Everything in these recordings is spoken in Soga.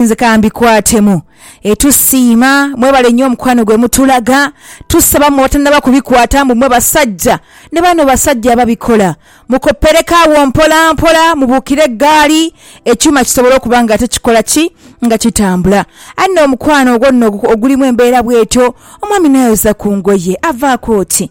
Nze kambikwatemu. Tusiima mwebale nyo omukwano gwe mutulaga. Tusaba mwe abatanaba kubikwata mbu mwe basajja ne bano basajja ababikola mukopereko agho mpola mpola mubukire eggaali ekyuma kisobole okuba nga ate kikola ki? nga kitambula. Aye nno omukwano ogwo nno ogulimu embeera bwetyo omwami nayoza ku ngoye avaako ki?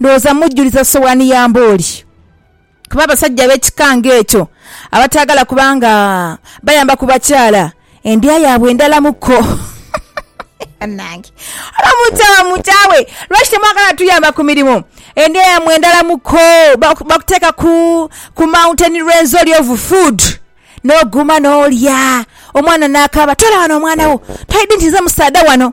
Ndhowooza mujjuliza sowani ya mbooli kuba abasajja ab'ekika ng'ekyo abataagala kuba nga bayamba ku bakyala, endya yaabwe ndhalamu kko. Bannange! Oba omuntu awa mutaawe, lwaki temwagala tuyamba ku mirimu? Endya yammwe ndhalamu kko. Bakuteeka ku mountain rwenzori of food n'oguma n'olya, omwana n'akaaba. Toola wano omwana wo, toidhi nti nze musaadha wano.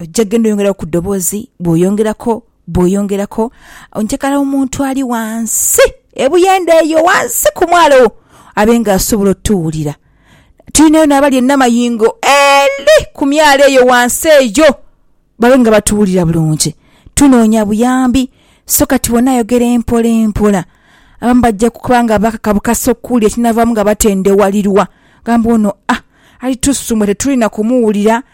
Ojja genda oyongeraku ku ddoboozi, bw'oyongeraku, bw'oyongeraku. Njagala omuntu ali ghansi, ebuyende eyo ghansi ku mwalo abe nga asobola otuwulira. Tulinayo n'abali e Namayingo ele ku myalo eyo ghansi eyo, babe nga batuwulira bulungi. Tunoonya buyambi. So kati wena ayogera empolampola. Abamu bajja kuba nga bakakabukasa okuwulira ekinaavaamu nga batendewalirwa. Gamba ono, ah, ali tusumba tetuli na kumuwulira.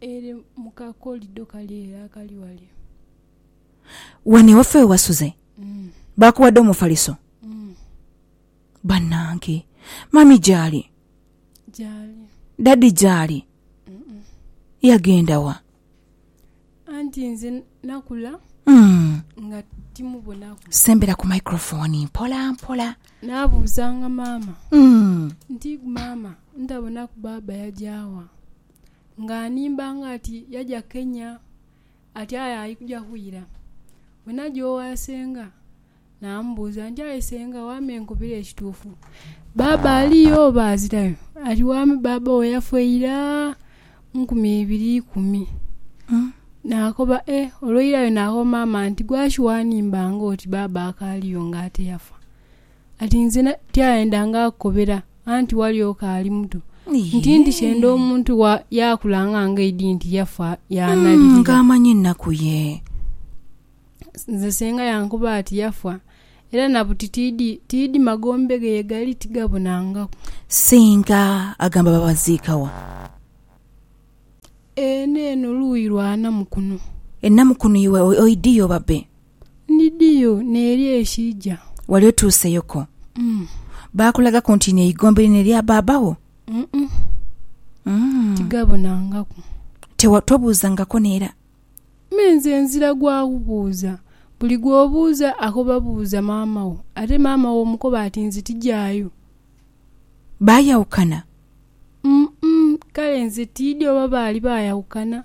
Ere mu kakolido kale ere akali wale. Wano ewaffe we wasuze? Baakuwadde omufaliso? Bannange! Mummy gy'ali? Gy'ali. Daddy gy'ali? Yagenda wa? Anti nze nakula nga timubonaku. Sembera ku microphone mpola mpola. Naabuuzanga maama nti, Maama, ntabonaku baaba yagya wa? Nga animbanga ati yaja kenya, ati aye aikuja kwira. Bwe naja owa senga, namubuuza nti aye senga wame nkubire ekituufu, baaba aliyo oba azirayo? Ati wame baaba wo yafa ira nkumi ibiri ikumi. Nakoba e olweirayo nakoba maama nti gwaki wanimbanga oti baaba akaaliyo nga ate yafa? Ati nzena tyayendanga kukobera, anti walyoka ali muto. Nti ndi kyenda omuntu wa yaakula nga ngeidi nti yafa yaanalirira. Nga amanyi ennaku ye. Nze senga yankoba ati yafa, era na buti tiidi tiidi magombe ge ye gali tigabonangaku. Senga agamba babaziika wa? Eno eno luuyi lwa Namukuno. E Namukuno iwe oidiyo babe? Ndidhiyo n'eri ekiija. Wali otuuseyo ko? Mm. Baakulagaku nti lino eigombe lino erya baaba wo? Mm-mm. Mm. Tigabonangaku. Tewa, tobuuzangako n'era? Me nze nzira gwa kubuuza. Buli gw'obuuza akoba buuza maama wo. Ate maama wo omukoba ati nze tijaayo. Baayawukana? Mm-mm. Kale nze tiidhi oba baali baayawukana.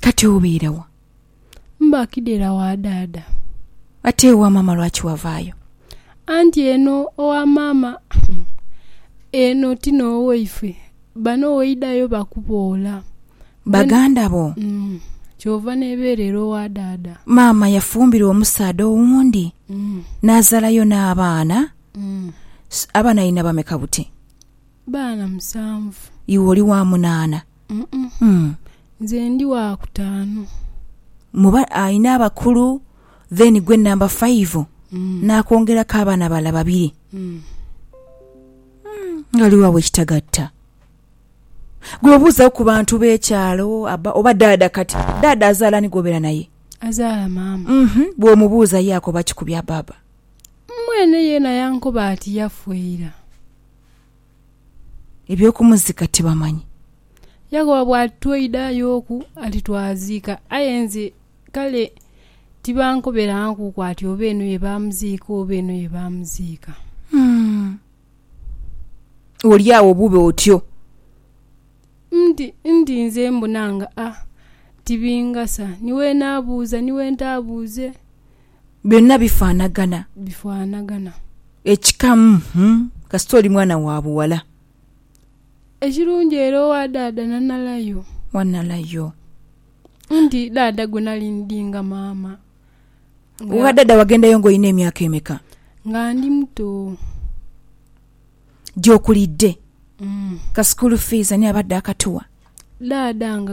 Kati obeera wa? Mba kidera wa daada. Ate ewa maama lwaki wavaayo? Anti eno owa maama eno ti n'owaifwe. Bano woidhayo bakuboola. Baganda bo? Umm. Kyova n'ebeerera owa daada. Maama yafumbirwa omusaadha owundi n'azalayo n'abaana? Umm. Abaana alina bameka buti? baana musanvu. Iwe oli wa munaana? Uh-uh. Nze ndi wa kutaanu. Mu ba, alina abakulu, then gwe namba faivu, n'akwongeraku abaana abalala babiri. Ghaliwo agho ekitagatta. Gwe obuuzagho ku bantu b'ekyalo abba, oba daada kati. Daada azaala ani gw'obeera naye? Azaala maama. Uh-huh. Bw'omubuuza ye akoba ki ku bya baaba? Mwene yeena yankoba ati yafa ira. eby'okumuzika tibamanyi. Yakobo bw'alitweidayo oku alitwaziika, aye nze kale tibankoberankuku ati oba eno ye baamuziika oba eno ye baamuziika. Oli agho bube otyo. Ndi, ndi nze mbona nga a tibingasa ni we naabuuza ni we ntaabuuze. Byonna bifaanagana. Bifaanagana. Ekikamu, hum, kasita oli mwana wa buwala. Ekirungi era owa daada na nala yo. Wa nala yo. Nti daada gwe nali ndi nga maama. Owa daada wagendayo nga olina emyaka emeka? Nga ndi muto. Gyokulidde. Ka school fees ani abadde akatuwa? dhaadha nga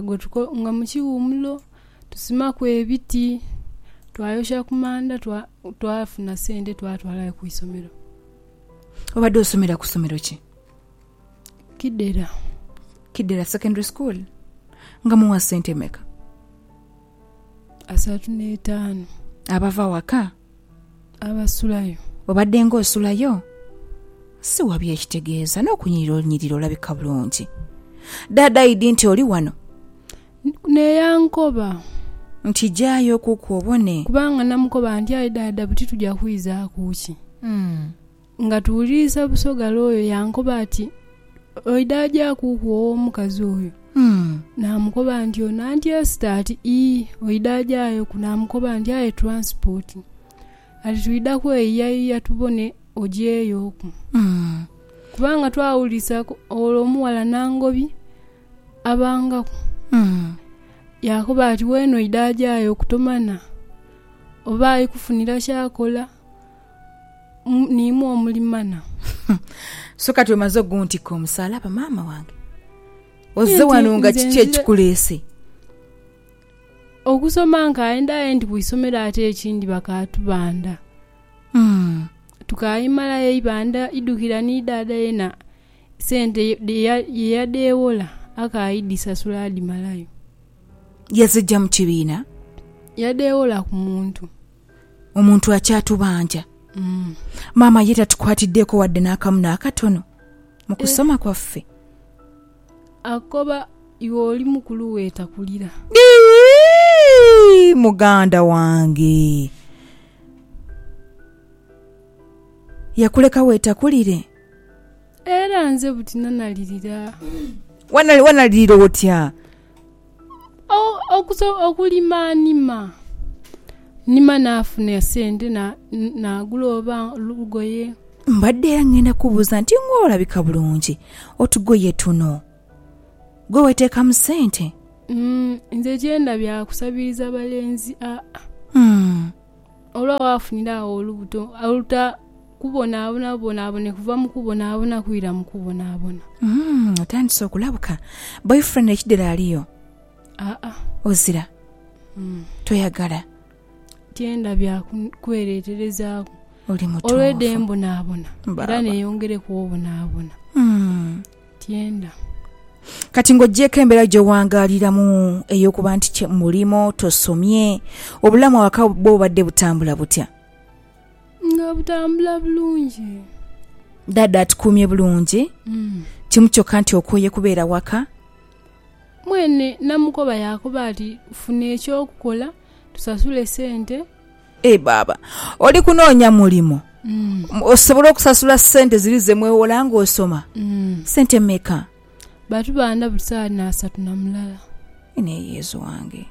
nga mu kiwumulo, tusimaku ebiti, twayokyera ku manda, twafuna sente twatwala ghe ku isomero. Obadde osomera ku somero ki? Kidera. Kidera Secondary School. Nga muwa sente meka? asatu n'etaanu. Abava waka? Abasulayo. Obadde ng'osulayo? Siwa byekitegeeza, n'okunyirira onyirira olabika bulungi. Daada Idi nti oli wano? N'e yankoba. Nti jaayo kuku obone. Kubanga namukoba nti aye daada buti tuja kwizaaku ki? Nga tuwuliriza Busoga looyo yankoba ati, Oidha ajaakuku ow'omukazi oyo? Naamukoba nti, Ono anti Esther? Ati, Ii, oidha ajaayoku. Naamukoba nti, Aye tulansipooti. Ati, Twidha kweyiyayiya tubone ogyeyoku. Kubanga twawulirizaku ole omughala Nangobi abangaku. Yaakoba ati, Weene oidha ajaayoku tomanha oba ali kufunira ky'akola. niimwe omulimana. So kati omaze oguntikka omusaalaba maama wange? Ozze wano nga kiki ekikuleese? Okusoma nkaenda aye ndi ku isomero ate ekindi bakaatubanda. Hmm. Tukaimalayo eibanda idhukira ni dhaadha yena sente ye yadheewola akaidhisasula adhimalayo. Yazija mu kibiina? Yadheewola ku muntu. omuntu akyatubanja. Maama ye tatukwatiddeeko wadde n'akamu n'akatono mu kusoma kwaffe. Akoba iwe oli mukulu weetakulira. Iihh! Muganda wange yakuleka weetakulire? Era nze buti nanalirira. Wanalirira otya? okulimanhima nima nafuna esente nagula oba lugoye. Mbadde era ngenda kubuuza nti nguwe olabika bulungi otugoye tuno gwe weteekamu sente? Nze kyendabye akusabiriza balenzi aa. Olwa waafunira agho olubuto, oluta kubonaabona bubonaabone kuva mu kubonaabona kwira mu kubonaabona. Mm, otandise okulabuka. Boyfriend ekidero aliyo? Aa, Ozira? mm, Toyagala? tyenda bya kun- kwereeterezaaku. Oli mutuufu. Olw'edembonaabona Baaba. era neeyongereku obonaabona. Mm. tyenda. Kati ng'oggyeeko embeera gye wangaaliramu ey'okuba nti kye mulimu, tosomye, obulamu awaka bwo bubadde butambula butya? Nga butambula bulungi. Ddaadda atukuumye bulungi? Mm. Kimu kyokka nti okooye kubeera waka? Mwene namukoba yaakoba ati, funa eky'okukola tusasule sente Eeh baaba. Oli kunoonya mulimo, osobole okusasula sente ziri ze mweghola nga osoma. Sente meka? Ba tubaana buli sawa ni asatu na mulala. Aye naye Yezu wange.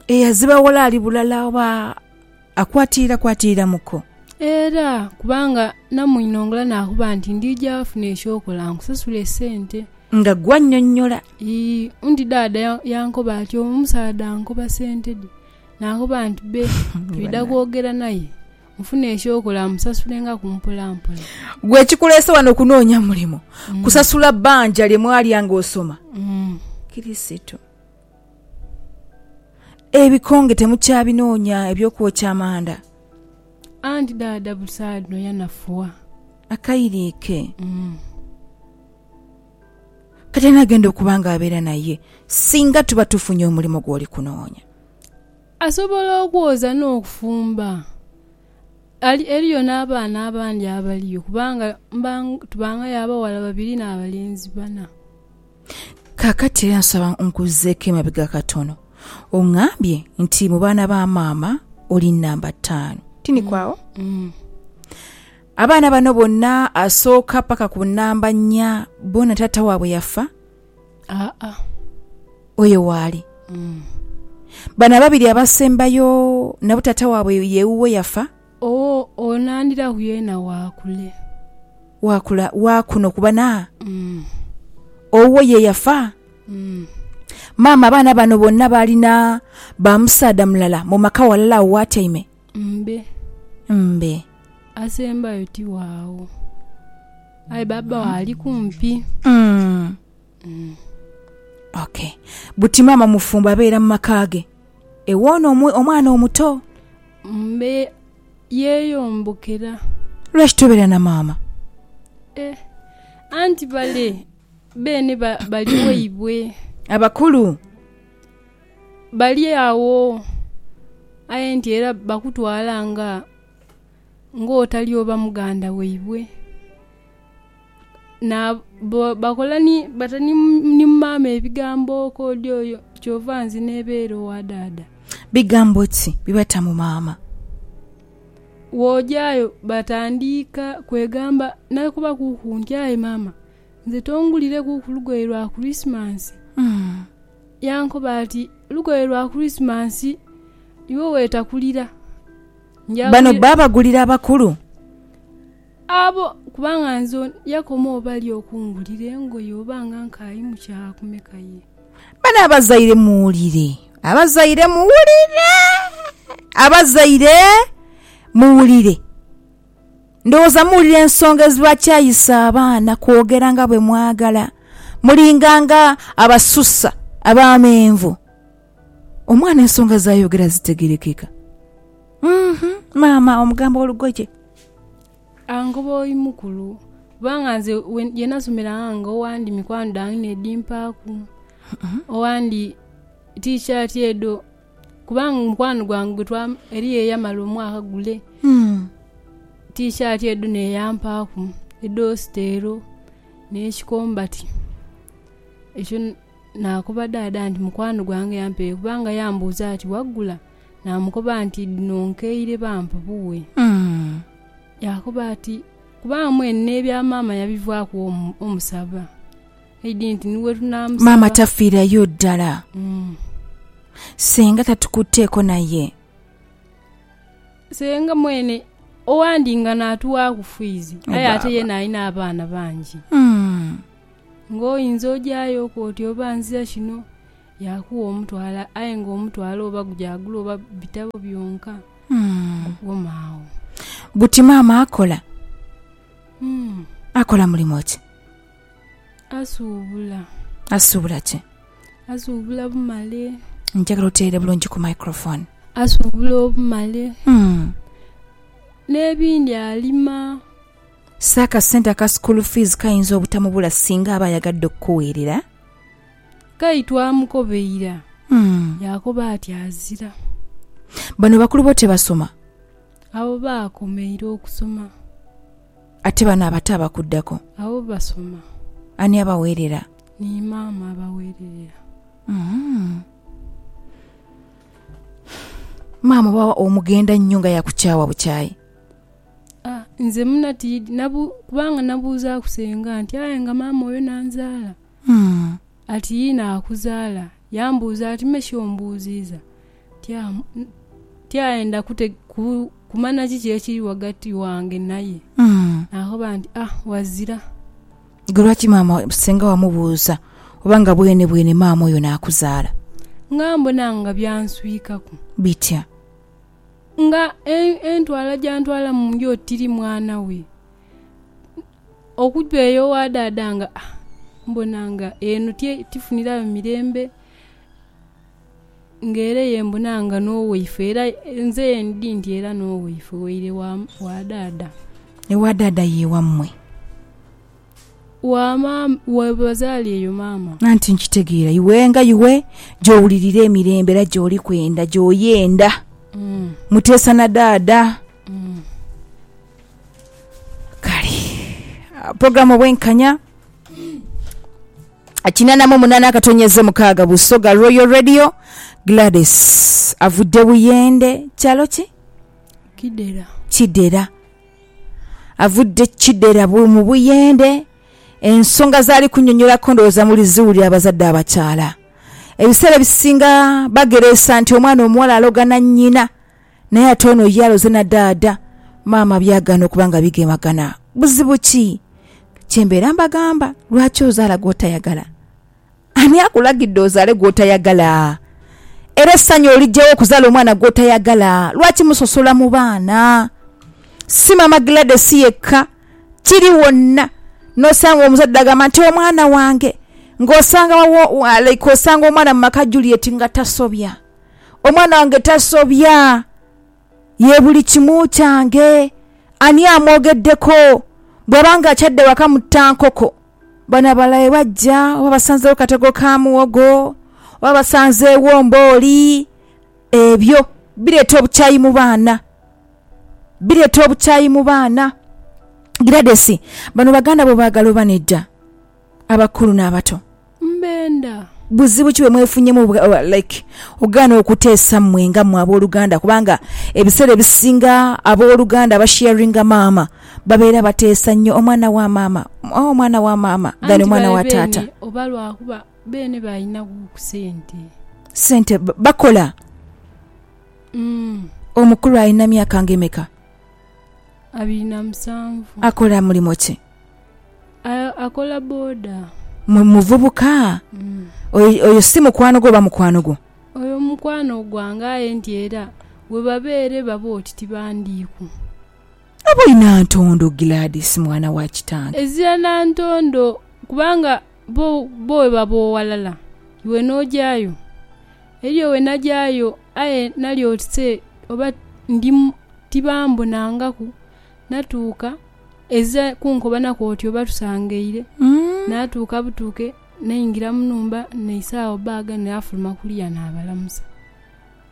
Eyazibaghola ali bulala oba? akwatiirakwatiiramuko. Era kubanga namuinhongela naaghuba nti ndiija wafuna eky'okola nkusasule esente. Nga gw'annyonnyola. Ii, undi daada yankoba ati, Omusaadha ankoba sente dhe. Naaghuba nti, Bee, twidha kwogera naye, nfune eky'okola musasulengaku mpolampola. Ggwe ekikuleese wano kunoonya mulimo, kusasula bbanja lye mwalya ng'osoma? Kristo. Ebikonge temukyabinoonya eby'okwokya amanda. Anti dhaadha busaagha dhino yanafuwa. Akaire ke. Kati ani agenda okuba ng'abeera naye singa tuba tufunye omulimo gw'oli kunoonya? Asobola okwoza n'okufumba. Ali, eriyo n'abaana abandi abaliyo, kubanga mba, tubanghayo abaghala babiri n'abalenzi bana. Kaakati era nsaba onkuzizeeku emabega katono. Ongambye nti mu baana ba maama oli nnamba ttaanu, tiniku agho? Abaana bano bonna asooka paka ku nnamba nnya boona taata waabwe yafa? Aa. Oyo waali. Bano ababiri abasembayo nabo taata waabwe ye wuwo yafa? Owo onandhiraku yeena waakule. Waakula wa kuno kuba na. Mm. Owo ye yafa. Mm. Maama abaana bano bonna baali na ba musaadha mulala mu maka walala awo w'atyaime? Mbe. Mbe. Asembayo ti waagho. Aye babawo ali kumpi. Mm. Ok. Buti maama mufumbo abeera mu maka ge? E woono omw omwana omuto? Mbe yeeyombokera. Lwaki tobeera na maama? E. Anti bale beene ba bali waibwe. Abakulu? Bali agho, aye nti era bakutwala nga ng'otali oba muganda waibwe. bakola ni bata ni maama ebigambo kodi oyo kyova nzina ebere owa dada. Bigambo ki byebata mu maama? Wojayo batandika kwegamba nakuba kuku nti aye maama nze tongulire kuku lugoye lwa kurismasi yankoba ati lugoye lwa kurismasi iwe wetakulira. Bano babagulira abakulu? Abo, kubanga nze ono. Yakomawo bali okungulira engoye oba nga nkaayi mu kyaagha kumeka ye. Bano abazaire muwulire. Abazaire muwulire. Abazaire muwulire. Ndowooza muwulira ensonga ezibakyayisa abaana kwogera nga bwe mwagala. Mulinga nga abasusa, abamenvu. Omwana ensonga z'ayogera zitegerekeka. Umm-hum, maama omugamba olugoje. Angoba oi mukulu, kubanga nze ye nasomera ghange owandi mikwano dhange n'edhimpaaku. Owandi tiishaati edho, kubanga mukwano gwange eriyo eyamala omwaka gule, tiishaati edho naye yampaaku edh'ositeero n'ekikombati. Naakoba dhaadha nti, Mukwano gwange yampeere kubanga yambuuza ati, Wagula? Naamukoba nti, Dhino nkeire bampa buwe. Yaakoba ati, Kubanga mwene n'ebya maama yabivaaku wo omusaba. Eidhi nti ni we tunaamusaba. Maama tafiirayo ddala. Senga tatukutteeko naye. Senga mwene owandinga naatuwaaku fiizi aye ate yeena alina abaana bangi. Ng'oyinza ojayo ku oti oba nzira kino yakuwa omutwalo aye nga omutwalo oba gujaagula oba bitabo byonka. Guma agho. Buti maama akola? Umm. Akola mulimo ki? Asuubula. Asuubula ki? Asuubula bumale. Njagala otereere bulungi ku microphone. Asuubula obumale. Umm. N'ebindi alima. So akasente aka school fees kayinza obutamubula singa aba ayagadde okukuweerera? Ghai twamukobeira yaakoba ati azira. Bano bakulu bo tebasoma? Abo baakomeire okusoma. Ate bano abato abakuddako? Abo basoma. Ani abaweerera? Ni maama abaweererera. Maama oba omugenda nnyo nga yakukyaawa bukyaayi? A, nze muna tiidi nabu, kubanga nabuuzaaku senga nti, Aye nga maama oyo n'anzaala? Ati, Yii, naakuzaala. Yambuuza ati, Me shi ombuuziiza? Ti, A, ti aye ndakute, ku, kumanya kiki ekiri ghagati wange naye. Naakoba nti, A, ghazira. Gwe lwaki maama, senga wamubuuza oba nga bwenebwene maama oyo n'akuzaala? Nga mbona nga byanswikaku. Bitya? Nga entwala gyantwala mu nju oti tiri mwana we, okuva eyo waadaada nga mbona nga eno tifunirayo mirembe. Nga era eyo mbona nga n'owaife era nze endi nti era n'owaife waire wa daada. Ewa daada ye wammwe? wa maama we bazaala eyo maama. Anti nkitegeera iwe nga iwe gy'owulirira emirembe era gy'oli kwenda gy'oyenda. Mm. Muteesa na daada. Mm. Kale ah, puroguramu obwenkanya kinana mu munana akatonyeze mukaaga busoga royal radio gladys avudde buyende kyalo ki Kidera. kidera Avudde Kidera mu Buyende, ensonga z'ali kunyonyolaku ndowooza muliziwulira abazadde abakyala. Ebiseera ebisinga bagereesa nti omwana omuwala aloga na nnyina naye ate ono ye aloze na daada, maama byagaana okuba nga bigemagana. Buzibu ki? Kyembeera mbagamba lwaki ozaala gw'otayagala? Ani akulagidde ozaale gw'otayagala? Era essanyu oliggya wa okuzaala omwana gw'otayagala? Lwaki musosola mu baana? Si Maama Gladys yekka, kiri wonna. N'osanga omuzadde agamba nti, Omwana wange! Ng'osanga wawo, like osanga omwana mu maka Juliet nga tasobya. Omwana wange tasobya. Ye buli kimu kyange. Ani amwogeddeko? Bw'aba ng'akyadde waka mutta nkoko. Bano abalala bwe bajja oba basanzeegho katego ka muwogo oba basanzeegho mbooli, ebyo bireeta obukyayi mu baana. Bireeta obukyayi mu baana. Giladesi, bano baganda bo obaagala oba nedda? Abakulu n'abato. Mbenda. Buzibu ki bwe mwefunyeemu like okugaana okuteesa mmwe nga mmwe abooluganda kubanga ebiseera ebisinga abooluganda abasheyaringa maama Babeera bateesa nnyo omwana wa maama, oh, omwana wa maama, than omwana wa taata. Anti babe beene oba lwakuba beene baalinagho ku sente. Sente, bakola. Omukulu alina myaka nga emeka? Abiri na musanvu. Akola mulimo ki? Akola boda. Muvubuka? Oyo si mukwano gwo oba mukwano gwo? Oyo mukwano gwange aye nti era webabeera ebaba oti tibandiiku. Ab'e Nantondo, Gladys mwana wa kitange. Ezira Nantondo kubanga bo bo webaba owalala iwe n'ojayo. Eriyo we najayo aye nali oti se oba ndi tibambonangaku natuuka ezira kunkobanako oti oba tusangaire natuuka butuuke naingira mu nhumba naisaawo bag nafuluma kuliya nabalamusa.